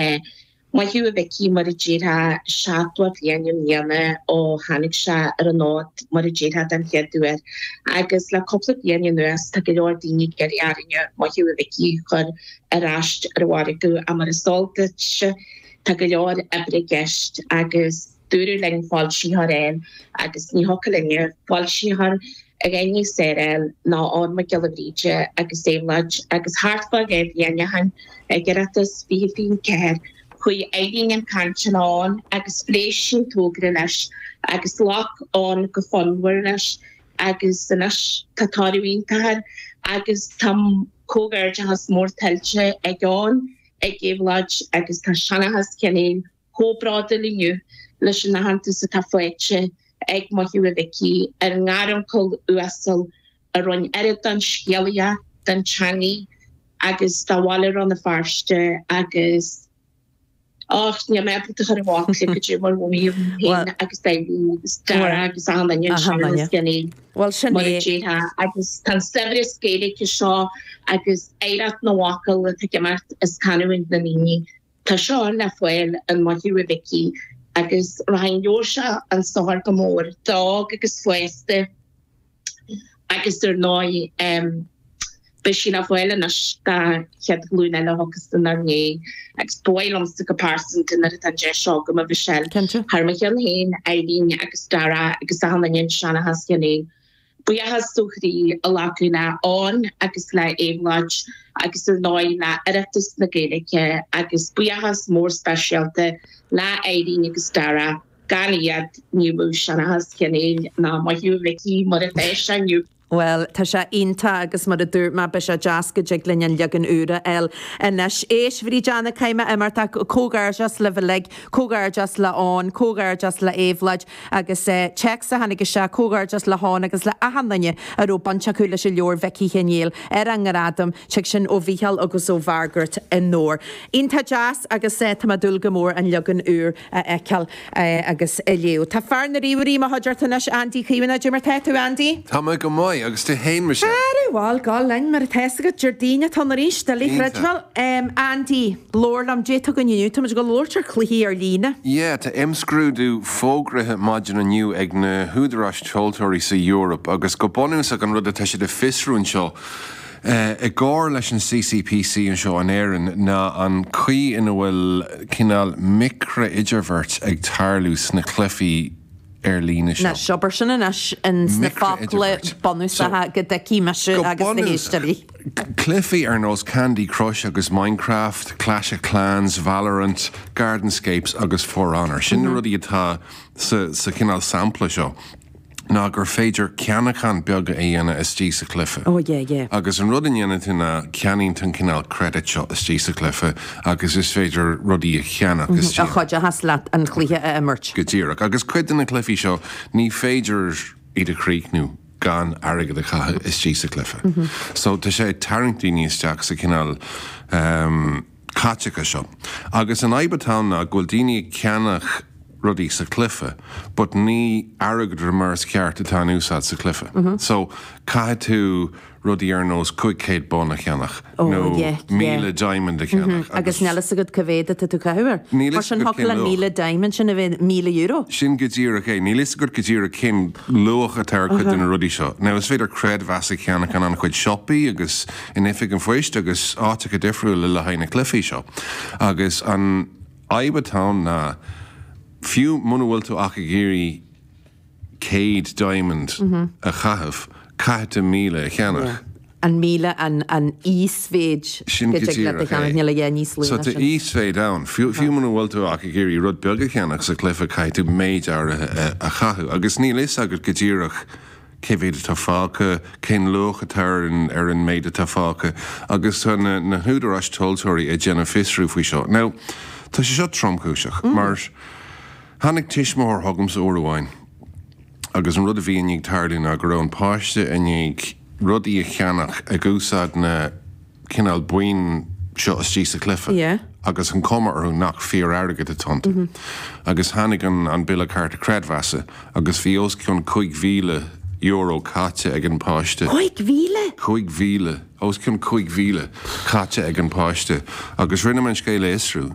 Maith thú a Mhicí, mar a déarfá, seachtó bliain i mbliana ó tháinig sé ar an fhód, mar a déarfá, den chéad uair. Agus le cúpla bliain anuas tá go leor daoine ag iarraidh orainne Maith thú a Mhicí a chur ar ais ar an mhargadh ach mar is eol duit tá go leor oibre i gceist agus Dúradh linn foilsitheoir a fháil agus ní thiocfadh linne foilsitheoir níos fearr a fháil ná Eoghan Mac Giolla Bhríde agus Éabhlóid agus thart fá dhá bhliain ó shin ag Oireachtas 2024, chuaigh Irene chun cainte le Eoghan agus phléigh sí an togra leis agus ghlac Eoghan go fonnmhar leis agus anois tá toradh iontach air agus tá comhghairdeachas mór tuillte ag Eoghan, ag Éabhlóid agus tá Seanchas Sheáin Néill. chomh bródúil inniu leis an aitheantas atá faighte ag Maith thú a Mhicí, ár ngaruncail uasal a roinn oiread den scéalaíocht, den teangaidh agus de bhaile Rann na Feirste agus Och, níl mé ábalta a chur i bhfocail caidé mar a mhothaigh mé féin agus Irene agus Dara agus achan duine i Seanchas Sheáin Néill, mar a déarfá agus tá an saibhreas Gaeilge seo agus oidhreacht na bhfocal atá ag imeacht as canúint na ndaoine. Tá seo le fáil in Maith thú a Mhicí agus thaitneodh sé an saothar go mór d'óg agus d'aosta agus ar ndóigh beidh sí le fáil anois don chéad ghlúin eile a thiocfas inár ndiaidh agus ba mhaith liomsa go pearsanta nuair atá an deis agam, a Mhichelle, thar mo cheann féin, Irene agus Darragh agus achan duine i Seanchas Sheáin Néill. Buíochas ó chroí a ghlacadh le Eoghan agus le Éabhlóid agus ar ndóigh le Oireachtas na Gaeilge agus buíochas mór speisialta le Irene agus Dara, gan iad ní bheadh Seanchas Sheáin Néill ná Maith thú a Mhicí mar a bheidh sé inniu. Bhuel, tá sé iontach agus mar a dúirt mé, beidh sé deas go dtig linn an leagan úr a fháil anois. Éist, Bhríd Anna, caithfidh mé imeacht ach comhghairdeas libh uilig, comhghairdeas le Eoghan, comhghairdeas le Éabhlóid, agus téacs a tháinig isteach, comhghairdeas le hEoghan agus le achan duine a raibh baint acu leis an leabhar Mhicí Sheáin Néill ar an nGradam, téacs sin ó Mhícheál agus ó Mhargaret anoir. Iontach deas agus tá mé ag dúil go mór an leagan úr a fheiceáil agus a léamh. Tá fear na ríomhairí i mo chuideachta anois, Andy Caomhánach, caidé mar tá tú Andy? Tá mé go maith, agus tú fhéin Michelle? Bhal, go linn mar atá fhios agat, Déardaoin atá ann arís, doiligh a chreidbheáil, Andy. Labhair liom, caidé atá againn inniu. Táimid ag labhairt ar chluichí ar líne. Yeah, tá imscrúdú fógraithe maidin inniu ag na húdaráis tomhaltóirí sa Eoraip agus go bunúsach an rud atá siad ag fiosrú anseo, i gcomhar leis an CCPC anseo in Éirinn, ná an chaoi ina bhfuil cineál micrea-idirbheart ag tarlú sna cluichí ar líne seo. Anois, abair sin anois sna focla bunúsacha go dtuigfidh mise agus na héisteoirí. cluichí ar nós Candy Crush agus Minecraft, Clash of Clans, Valorant, Gardenscapes agus For Honor. Sin na rudaí atá sa chineál sampla seo ná gur féidir ceannacháin bheaga a dhéanamh istigh sa chluiche. Oh yeah, yeah. Agus an rud a ndéanann tú ná ceannaíonn tú an cineál credit seo istigh sa chluiche agus is féidir rudaí a cheannach istigh. A chuideochas leat an cluiche a imirt. Go díreach. Agus cuid de na cluichí seo, ní féidir iad a chríochnú. gan airgead a chaitheamh istigh sa chluiche. So tá sé ag tarraingt daoine isteach sa chineál ehm caiteachais seo. Agus an fhadhb atá ann ná go bhfuil daoine ag ceannach rudaí sa chluiche but ní airgeadra mar is cheart atá in úsáid sa chluiche. So caithfidh tú rudaí ar nós 500 bonn a cheannach. nó míle diamond a cheannach. Agus níl fhios agat cé mhéad atá tú ag caitheamh air. Níl fhios agat cén luach. Mar sin, thiocfadh leis an míle diamond sin a bheith míle euro. Sin go díreach é. Níl fhios agat go díreach cén luach atá ar chuid de na rudaí seo. Now, is féidir creidmheas a cheannach in an-chuid siopaí agus in oifig an phoist agus áiteacha difriúla le haghaidh na cluifí seo. Agus an fhadhb atá ann ná, fiú muna bhfuil tú ach ag iarraidh, 100 diamond a chaitheamh, caithfidh tú 1000 a cheannach. Á, 1000 an íosmhéid go dtig leat a cheannach, níl a dhath níos lú ná sin. So tá íosmhéid ann. Fiú muna bhfuil tú ach ag iarraidh rud beag a cheannach sa chluiche, caithfidh tú méid áirithe a chaitheamh. Agus níl fhios agat go díreach cé mhéad atá fágtha, cén luach atá ar an méid atá fágtha. Agus tá na húdaráis tomhaltóirí ag déanamh fiosrú faoi seo. Now, tá sé seo tromchúiseach mar, Tháinig tuismitheoir chugamsa uair amháin agus an rud a bhí i ndiaidh tarlú ná go raibh an páiste i ndiaidh rudaí a cheannach ag úsáid na cineál boinn seo istigh sa chluife agus an chuma orthu nach fíor-airgead atá iontu. Agus tháinig an bille cárta creidmheasa agus bhí os cionn cúig mhíle euro caite ag an pháiste. Cúig mhíle? Cúig mhíle. Os cionn cúig mhíle caite ag an pháiste. Agus rinne mé an scéal a fhiosrú.